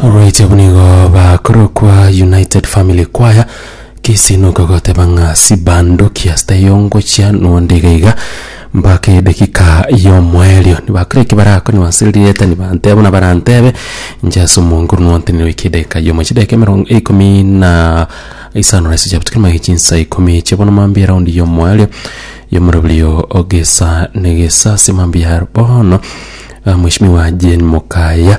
Oboichabo nigo bakorokwa United Family Choir, gese nokogoteba ng'a sibandoki ase taiyo ngochia nonde iga iga mpaka edakika y'omoerio. Nibakora eki barakonywa ase rieta nibanteba buna barantebe inche ase omonto oria nontenereire goika edagika y'omochie edagika emerongo ikomi na isano na isechaba tikeri magega chinsa ikomi echio bono mambia eround y'omoerio y'omoroberio o gesa na gesa ase mambia bono mweshimiwa Jane Mokaya.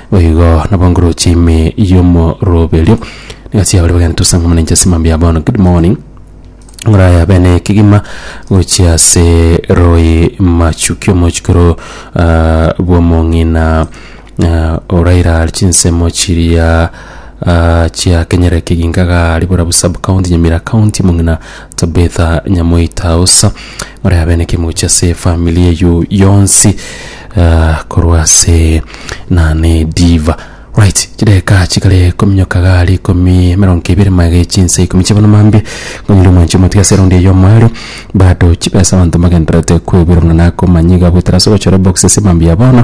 Boigo nabo ngorochi ime y'omoroberio, negasi yabo ere bagento ase eng'umana inche ase mambia bono, good morning, ngoraya bene ekegima gochia ase roi machuki omochikoro ah, bw'omong'ina ah, oraira chinsemo chiria ah, chiakenyera ekeginka gari bora bu sub county nyamira county mong'ina Tabitha nyamoita usa muri abe nekemuchi ase efamili eyu yonsi uh, korwa ase nane diva right chideka chikare kominyoka gari komi emerongo ebere mage chinse ikomi chibono mambie ngonyire omwanchi omatiga ase raundi eyo mwari bado chibesa abanto magenderete kwebirana nakomanya iga bwetera ase ogochora box ase mambia bono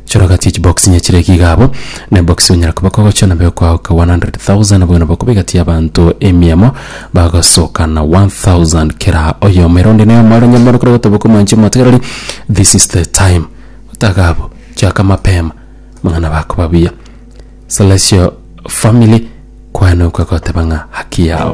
Chora gati echi box inya chire iga abo ne box onyara koba kogocha nabo ekoagoka 100,000 bono bakoba egati ya abanto emiamo bagosoka na 1000 kera oyomo ere onde noyomo are nyomoro kore gotoboka omwanche omotegereri this is the time otaga abo chiaka mapema mang'ana bakoba buya Celestial family kwane okwe goteba ng'a haki yao.